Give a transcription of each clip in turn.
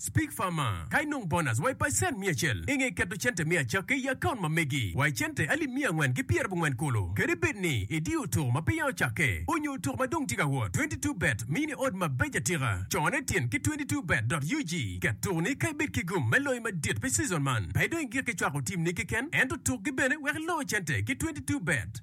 Speak Farmer, Ka inong bonus wa i pacent miya acel, inge keto cente me acakke i akaunt ma megi wa i cente alip miya angwen ki pyer abongwen kulu. Kadi bed ni idiyo otuk ma peya ocakke, onyo otuk ma dong tye ka wot, Twenty Two Bet miyi ni odd mabeco atika. Cone tin ki Twenty Two Bet dot ug. Ket tuk ni ka ibed ki gum me loyo madit pi season man, pe idong igik ki cwako team ni keken, ento tuk gi bene wek iloo cente ki Twenty Two Bet.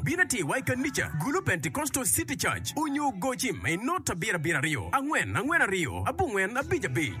Bin ati wa i kanica, Gulu Pentecostal City Church, onyo goci ma i not abiro abiro aryo, angwen angwen aryo, abongwen abic abic.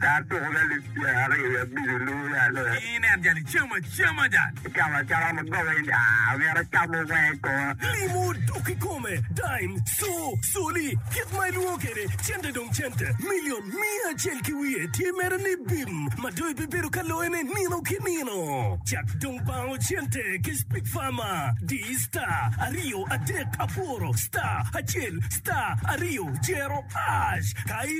Ka atuko lalib tyen aryo i abili lubo ya loyo. Ki inen jal icamo acama jal. Icamo acama ma goba in aa myero acamo wenge kong. Limo dok kikome, dime, co, coli, kit ma ilwongo kede cente dong cente, million miya acel ki wiye tye mere ni bim ma dong ibibedo ka loyo ne nino ki nino. Cak dong bango cente ki speak farmer, di star aryo adek aboro star acel star aryo zero ash ka i.